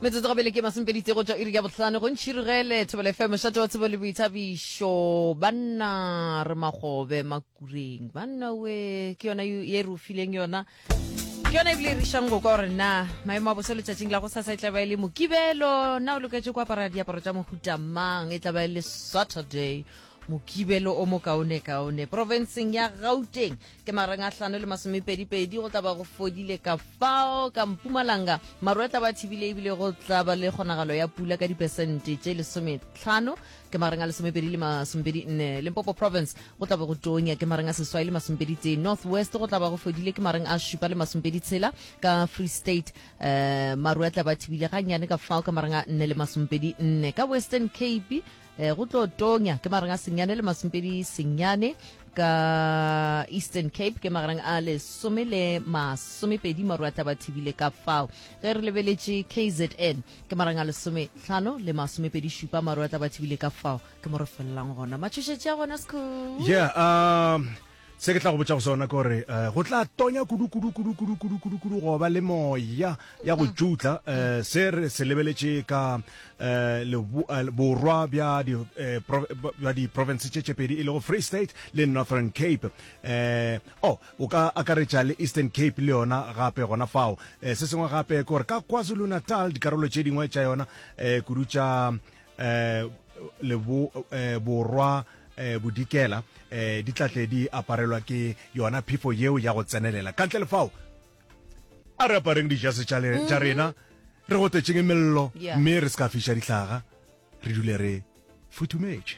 metsotso go bele ke masomepedi tsego tša iri ya bohlano go ntšhirigele thobele fe mošate wa tsebo le boithabišo banna re magobe makureng banna we ke yona ye re o fileng yona ke yona ebile e rišang go kwa gore na maemo a bosa letšatšing la go sasa e tla ba e le mokibelo na o loketse go apara diaparo tša mohuta mang e tla ba e le saturday Mokibelo o mokaonekaone profenseng ya Gauteng ke marang a hlano le masomepedipedi go tla ba go fodile ka fao ka Mpumalanga maru a tla ba thibile ebile go tla ba le kgonagalo ya pula ka dipesente tše lesometlhano ke marang a lesomepedi le masomepedi nne Limpopo province go tla ba go tonya ke marang a seswai le masomepedi tee North West go tla ba go fodile ke marang a šupa le masomepedi tshela ka Free State um maru a tla ba thibile gannyane ka fao ka marang a nne le masomepedi nne ka Western Cape Eh, go tlo tonya ke magareng a senyane le masompedi senyane ka eastern cape ke magareng a lesome le masomepedi maru a tlaba thibile ka fao ge re lebeletše kzn ke magareng a lesome tlhano le masomepedi šupa maru a tlaba thibile ka fao ke mo re felelang gona matšhošetše a gona sekhu yeah, uh, Se ke tla go botša go sona ke gore um go tla tonya kudu-kudu-kudu-kudu-kudu-kudu-kudu go ba le moya ya go tšutla um se re se lebeletše ka um borwa bja diprovince tše tšepedi e lego free state le northern cape um o o ka akaretša le eastern cape le yona gape gona fao um se sengwe gape ke gore ka kwazulu-natal dikarolo tše dingwe tša yona um kudu tša eh, lebo, eh, borwa eh, bodikela eh, di tlatle di aparelwa ke yona phefo yeo ya go tsenelela ka ntle lefao a re apareng dijase tša le- tša rena re go tetšeng mello Yeah. mme re se ka fiša dihlaga re dule re futhumetse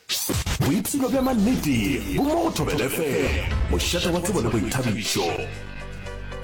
Boipshino bja mannete bo mo go Thobela FM, mošate wa tsebo le boithabišo.